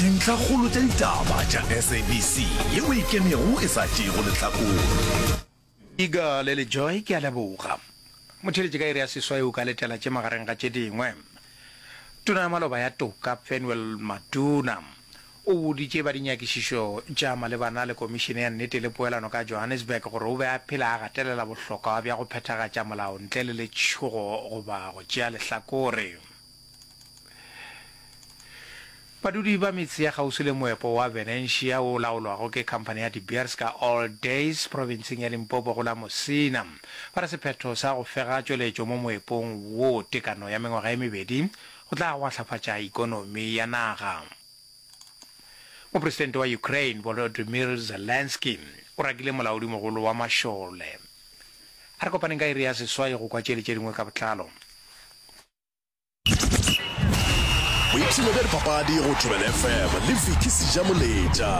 Dintlhakgolo tša ditaba tša SABC ye o e kenego e sa tšeego lehlakore. Iga le le Joy ke a leboga. Motheeletše ka iri ya seswai o ka letela tše magareng ga tše dingwe. Tona ya Maloba ya Toka Penuel Maduna o boditše ba dinyakišišo tša malebana le Komišene ya Nnete le Poelano ka Johannesburg gore o be a phela a gatelela bohlokwa bja go phethagatša molao ntle le letšhogo goba go tšea lehlakore. Badudi ba metse ya kgauswi le moepo wa Venencia wo o laolwago ke khamphane ya De Beers ka All Days profenseng ya Limpopo go la Mosina ba re sephetho sa go fega tšweletšo mo moepong wo tekano ya mengwaga e mebedi go tla gwahlafatša ikonomi ya naga. Mopresidente wa Ukraine Volodymyr Zelensky o rakile molaodimogolo wa mašole. A re kopaneng ka iri ya seswai go kwa tše le tše dingwe ka botlalo. boipshino bja dipapadi go thobela fm le viki seja moletša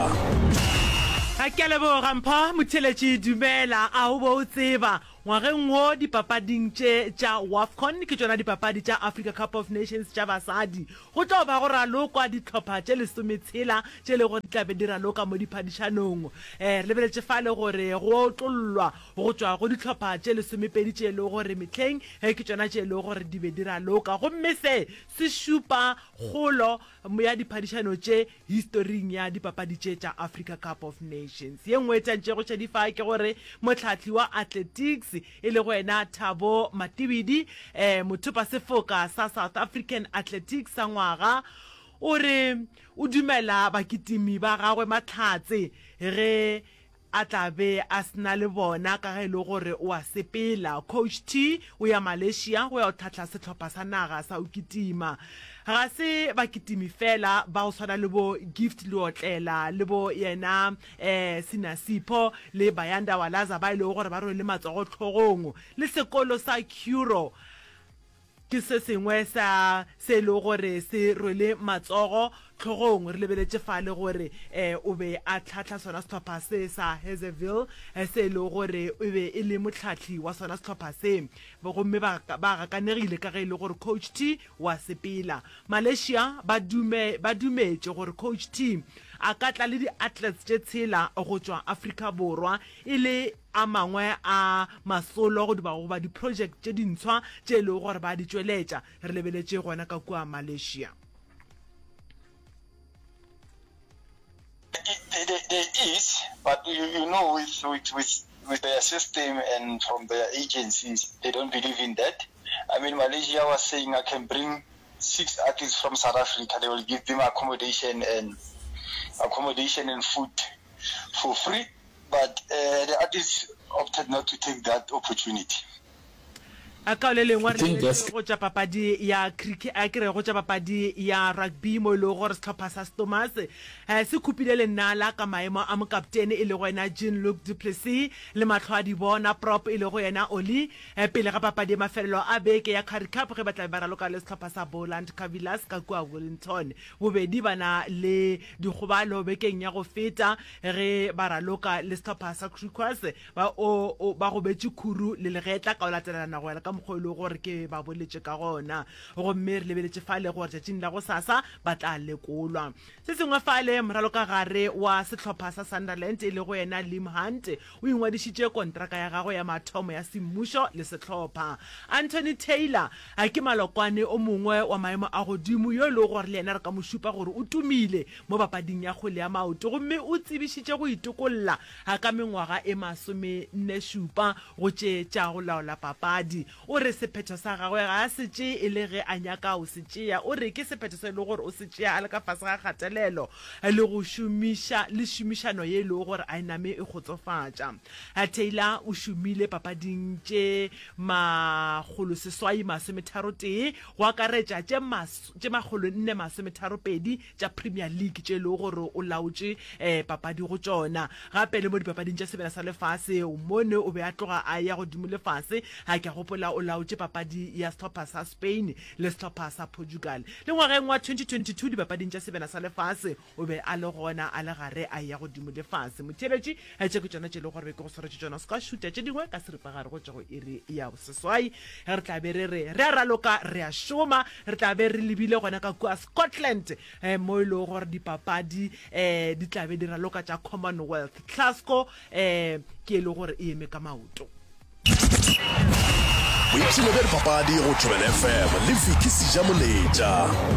ga ke leboga mpho motheletši dumela a o bo o tseba ngwageng wo dipapading tše tša wafcon ke tšona dipapadi tša africa cup of nations tša basadi go tlo ba go ralokwa ditlhopha tše lesometshela tše le gore di tlabe di raloka mo diphadišanong um re lebeletše fa le gore go otlollwa go tšwa go dihlopha tše lesomepedi tše e lego gore mehleng ge ke tšona tše e lego gore di be di raloka gomme se se šupa kgolo ya diphadišano tše historing ya dipapadi tše tša Africa Cup of Nations. Ye nngwe e tšantšego šadifa ke gore mohlahli wa athletics e lego yena Thabo Matibidi, mothopasefoka sa South African Athletics sa Ngwaga, o re o dumela bakitimi ba gagwe mahlatse ge A tla be a se na le bona ka ge e le gore o a sepela. Coach T o ya Malaysia go ya go tlhahla sehlopha sa naga sa go kitima. Ga se bakitimi fela ba go swana le bo Gift Leotlela le bo yena um Sina Sipho le Bayanda Walaza ba e lego gore ba rwele matsogo hlogong le sekolo sa Curro. Ke se sengwe sa se e lego gore se rwele matsogo hlogong. Re lebeletše fale gore e o be a hlahla sona sehlopha se sa Hazyville, se e lego gore e be e le mohlahli wa sona sehlopha se. Gomme ba ba gakanegile ka ge e le gore Coach T o a sepela. Malaysia ba dume ba dumetše gore Coach T a ka tla le di-athletes tše tshela go tšwa Afrika Borwa e le a mangwe a masolo goba goba diprojeke tše dintshwa tše e lego gore ba di tšweletša, re lebeletše gona ka kua Malaysia. There, there, there is, but you, you know, with, with, with, with their system and from their agencies, they don't believe in that. I mean, Malaysia was saying I can bring six artists from South Africa. They will give them accommodation and accommodation and food for free. A kaone lengwari le le tšwa go tša papadi ya cricket a ke re go tša papadi ya rugby mo e lego gore sehlopha sa Stormers se khupile lenala ka maemo a mokaptene e lego yena Jean-Luc du Plessis le mahlo a di bona prop e lego yena Ollie pele ga papadi ya mafelelo a beke ya Currie Cup ge ba tlabe ba raloka le sehlopha sa Boland Cavillas ka kua Wellington. Bobedi ba na le dikgobalo bekeng ya go feta Ge ba raloka le sehlopha sa Griquas, ba o o ba gobetše khuru le legetla ka go latelelana go ya le ka mokgwa o e lego gore ke ba boletše ka gona. Gomme re lebeletše fale gore tšatšing la gosasa ba tla lekolwa. Se sengwe fale, moralokagare wa sehlopha sa Sunderland e lego yena Liam Hunt O ingwadišitše kontraka ya gagwe ya mathomo ya semmušo le sehlopha. Anthony Taylor a ke malokwane o mongwe wa maemo a godimo yo e lego gore le yena re ka mo šupa gore o tumile mo papading ya kgwele ya maoto gomme o tsebišitše go itokolla ga ka mengwaga e masomenne-šupa go tše tša go laola papadi. O re sephetho sa gagwe ga a se tšee e le ge a nyaka o se tšea. O re ke sephetho se e lego gore o se tšea a le ka fase ga kgatelelo le go šomiša le šomišano ye e lego gore a e name e kgotsofatša. Taylor o šomile papading tše makgolo seswai masome tharo tee, go akaretša tše makgolo nne masome tharo pedi, tša Premier League tše e lego gore o laotše um papadi go tšona, gape le mo dipapading tša sebjana sa lefase. Mone o be a tloga a eya godimo le fase, ga ke a gopola o laotše papadi ya sehlopha sa Spain le sehlopha sa Portugal. Le ngwageng wa 2022 dipapading tša sebjana sa lefase o be a le gona a le gare a eya godimo le fase. Motheeletši Tše ke tšona tše e lego gore ke go swaretše tšona, o se ka wa šuta tše dingwe ka seripagare go tšwa go iri ya boseswai. Re tla be re re re a raloka re a šoma, re tla be re lebile gona ka kua Scotland um mo e lego gore dipapadi um di tla be di raloka tša Commonwealth. Glasgow um ke e lego gore e eme ka maoto. Boipshino bja dipapadi go Thobela FM le Vicky Sejamoletša.